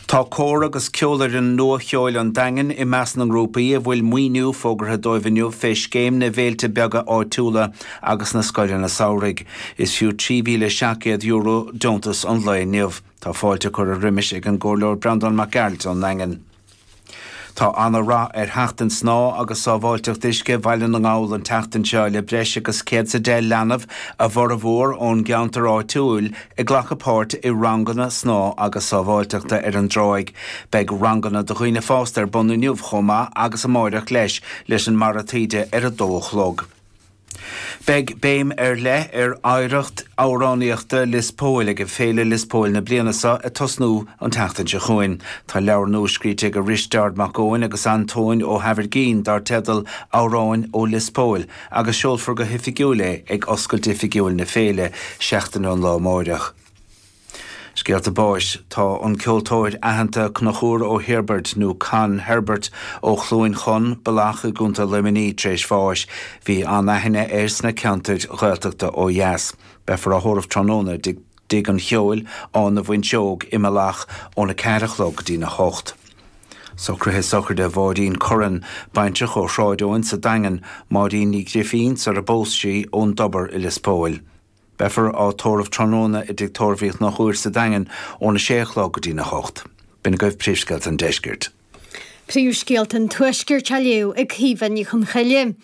Tá cór agus ceolfhoireann Nua-Cheoil an Daingin i measc na ngrúpaí a bhfuil maoiniú fógartha dóibh inniu fé scéim na bhféilte beaga áitiúla agus na scoileanna samhraidh. Is fiú €3,700 deontas an lae inniu. Tá fáilte curtha roimis ag an gComhairleoir Breandán Mac Gearailt ón nDaingean. Tá ana rath ar Sheachtain Snámha agus Sábháilteacht Uisce Bhaile na nGall an tseachtain seo le breis agus céad is a deich leanbh, a bhformhór ón gceantar áitiúil, ag glacadh páirt i ranganna snámha agus sábháilteachta ar an dtráigh. Beidh ranganna do dhaoine fásta ar bun inniu chomh maith agus amáireach leis, leis an mbarra taoide ar a dó a chlog. Beidh béim ar leith ar oidhreacht amhránaíochta Lios Póil ag Féile Lios Póil na bliana seo ag tosnú an tseachtain seo chugainn. Tá leabhar nua scríte ag Risteárd Mac Eoin agus Antóin Ó hAimhirgín dar teideal Amhráin ó Lios Póil agus seolfar go hoifigiúil é ag oscailt oifigiúil na féile seachtain ón lá amáireach. Scéalta Báis Tá an ceoltóir aitheanta Conchúr Ó hOirbeaird, nó Con Herbert, ó Chluain Chon, Bealach i gContae Luimnigh tar éis bháis. Bhí an-aithne air sna ceantair Ghaeltachta ó dheas. Beifear á thórramh tráthnóna i dTigh an Cheoil, Áth na bhFuinseog, i mBealach, óna ceathair a chlog go dtí na hocht. Socruithe Sochraide Mháirín Curran, baintreach ó Shráid Eoin sa Daingean, Máirín Ní Ghrifín, sar a bpós sí, ón dTobar i Lios Póil. Beifear á tórramh tráthnóna i dTigh Tórraimh Uí Chonchúir sa Daingean óna sé a chlog go dtí'n a hocht. B'in agaibh Príomhscéalta an Deiscirt. Príomhscéalta an Tuaiscirt á léamh ag Caoimhe Ní Chonchoille.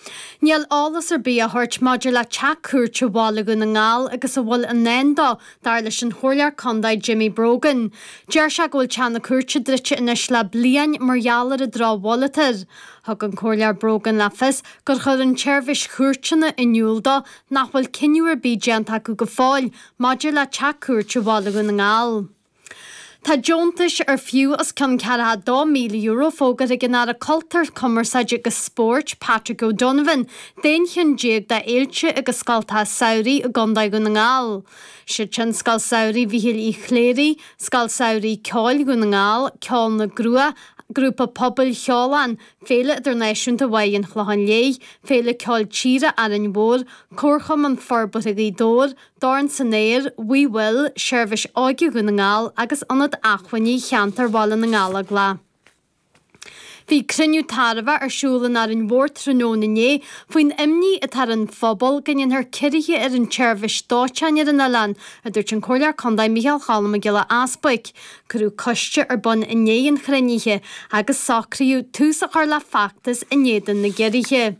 Níl eolas ar bith á thabhairt maidir le teach cúirte Bhaile Dhún na nGall agus a bhfuil i ndán dó, dar leis an Chomhairleoir Contae Jimmy Brogan. Deir sé go bhfuil teach na cúirte druidte anois le bliain mar gheall ar an drochbhail atá air. Thug an Comhairleoir Brogan le fios gur chuir an tSeirbhís Chúirteanna in iúl dó nach bhfuil cinneadh ar bith déanta acu go fóill maidir le teach cúirte Bhaile Dhún na nGall. Tá deontais ar fiú os cionn €42,000 fógartha ag an Aire Cultúir, Cumarsáide agus Spóirt, Patrick O'Donovan, d'aon cheann déag d'fhéilte agus scoltacha samhraidh i gContae Dhún na nGall. Siad sin Scoil Samhraidh Mhichíl Uí Chléirigh, Scoil Samhraidh Ceoil Dhún na nGall, Ceol na gCruach, Grúpa Pobail Cheoláin, Féile Idirnáisiúnta Mháire an Chlocháin Léith, Féile Ceoil Tíre Árainn Mhór, Comharchumann Forbartha Ghaoth Dobhair, Dorn san Aer, We Will, Seirbhís Óige Dhún na nGall agus Ionad Acmhainní Cheantar Bhaile na nGallóglá. Bhí cruinniú tairbheach ar siúl in Árainn Mhór tráthnóna inné faoin imní atá ar an phobal go ndéanfar ciorruithe ar an tseirbhís dóiteáin ar an oileán, a dúirt an Comhairleoir Contae Micheál Choilm Mac Giolla Easbuig. Cuireadh coiste ar bun i ndiaidh an chruinnithe agus socraíodh tús a chur le feachtas in éadan na gciorruithe.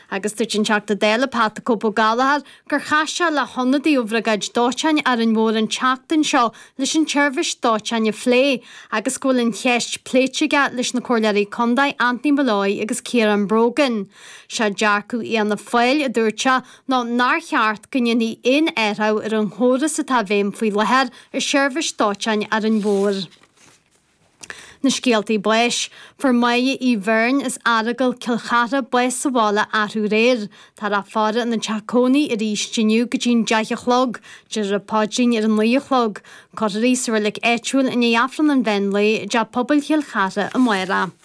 Agus dúirt an Teachta Dála Pat the Cope Gallagher gur chas sé le hionadaí ó bhriogáid dóiteáin Árainn Mhór an tseachtain seo leis an tseirbhís dóiteáin a phlé agus go bhfuil an cheist pléite aige leis na Comhairleoirí Contae Anthony Molloy agus Ciarán Brogan. Sé dearcadh Fhianna Fáil, a dúirt sé, nó nár cheart go ndéanfaí aon athrú ar an chóras atá i bhfeidhm faoi láthair i seirbhís dóiteáin Árainn Mhór. Na scéaltaí báis. Fuair Máire Uí Bheirn as Aireagal Cill Chartha bás sa bhaile arú aréir. Tá an fhaire ina dteach cónaí arís inniu go dtí an deich a chlog, déarfar an paidrín ar a naoi a chlog. Cuirfear í sa reilig áitiúil i ndiaidh Aifreann an Mheán Lae i dTeach Pobail Chill Chartha amárach.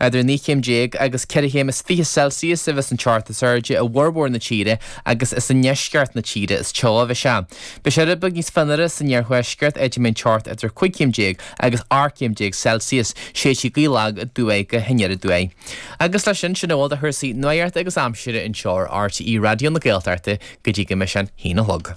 Idir naoi chéim déag agus ceithre chéim is fiche Celsius a bheas an teocht is airde i bhformhór na tíre agus is i ndeisceart na tíre is teo a bheidh sé. Beidh sé rud beag níos fionnuaire san iarthuaisceart, áit a mbeidh an teocht idir cúig chéim déag agus ocht gcéim déag Celsius. Séidfidh gaoth lag aduaidh go hanoir aduaidh. Agus leis sin, sin a bhfuil de chúrsaí nuaíochta agus aimsire anseo ar RTÉ Raidió na Gaeltachta go dtí go mbeidh sé a haon a chlog.